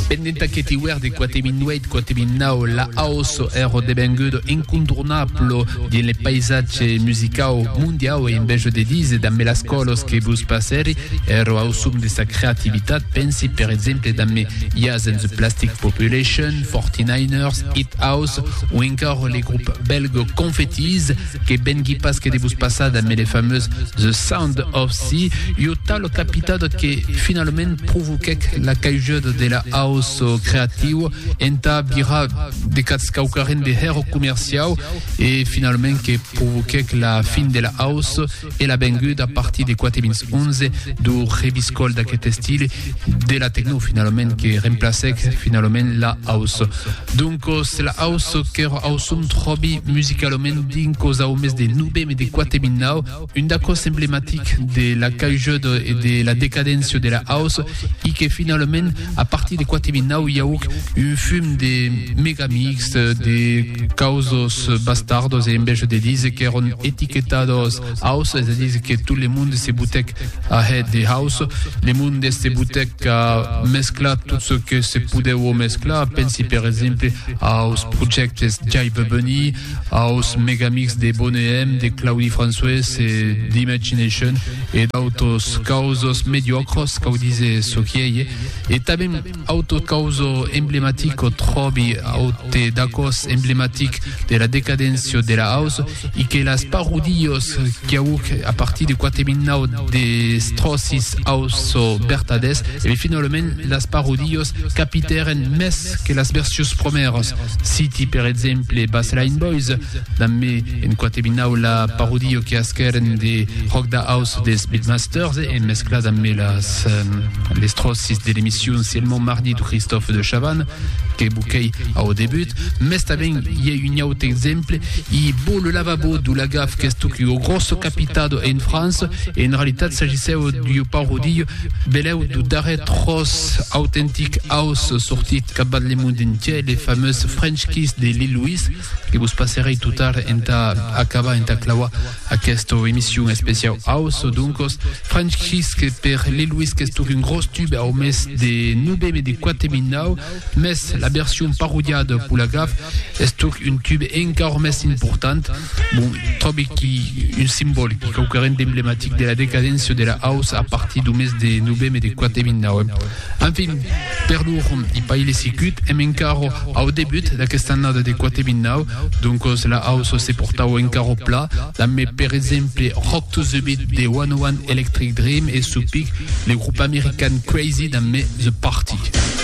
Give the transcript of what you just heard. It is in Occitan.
Pendent aqueth iuèrn de 4008-4009, la house ère devenguda incontornabla dins le paisatge musicau mondiau e enveja de díser damb las còlas que vos passèri era au som de sa creativitat, pensi per exemple damb Yaz and the Plastic Population, Forty Niners, Hit House o encara le grop bèlga Confettis. Que vengui pas que de vos passar damb le fameux The Sound of Sea, ua talo capitado que finalament provoquèc la caiguda de la house creatiu entà virar de cats quauquarren de hèro comerciau e finalament que provoquèc la fin de la house e la benguda a partir de 4011 do rebiscòl d'aquest estile de la tecno finalament que remplacèc finalament la house. Doncos la house qu'èra au son tròbi musicalament dins cos au mes de novembre de 4009, un d'acòs emblematics de la caujada e de la decadéncia de la house e que finalament A partir de 4009 i auc un fum de megamix de causos bastardos e enveja de dise qu'èron etiquetados house, es a dise que tot le monde se botèc a hèt de house, le monde se botèc a mesclar tot çò que se podèu o mesclar, pensi per exemple aus projèctes Jai Bubony, aus Megamics de Bonehem, de Claudi François e d'Imagination e d'autos causos mediòcros, cau dise çò qui ei, e tanben auto causo emblematic o tròbi aute d'acòs emblematic de la decadéncia de la house i que las parodios quiauc a partir de 4009 des tròcis house o bertadès e finalament las parodios capitèren mès Permés que las versius promèras, citi per exemple Bassline Boys, damb me en quate binau la parodio que asquèren de Rock da House des Beatmasters e en mescla damb me las les tròcis de l'emission Sielmon Mardi du Christophe de Chavanne que boquèi au debut, mès tanben i a un aute exemple, i bo le lavabo du Lagaf qu'estuc ua grosso capitado en França e en realitat s'agissèu d'ua parodio Belèu du darrèr tròç autentic aus sortit capbat le mond entièr, le famós French Kiss de Lil Louis, que vos passerèi tot tard entà acabar, entà clauar aquesta emission especiau aus. Doncos, French Kiss que per Lil Louis qu'estuc un gròs tube au mes de noveme de 4009, Mès la version parodiada pour la gaffe es tuc un tube encaor mès important, bon, tròbi qui un simbòl qui quauqueren d'emblematic de la decadéncia de la house a partir du mes de noveme de 4.009. Enfin, per lor i pas il sicut, èm encaor au debut d'aquesta annada de 4.009, doncos la house se portau encaor pla, dambe per exemple Rock to the Beat de One O One Electric Dream e su pic le grup american Crazy dambe The Party.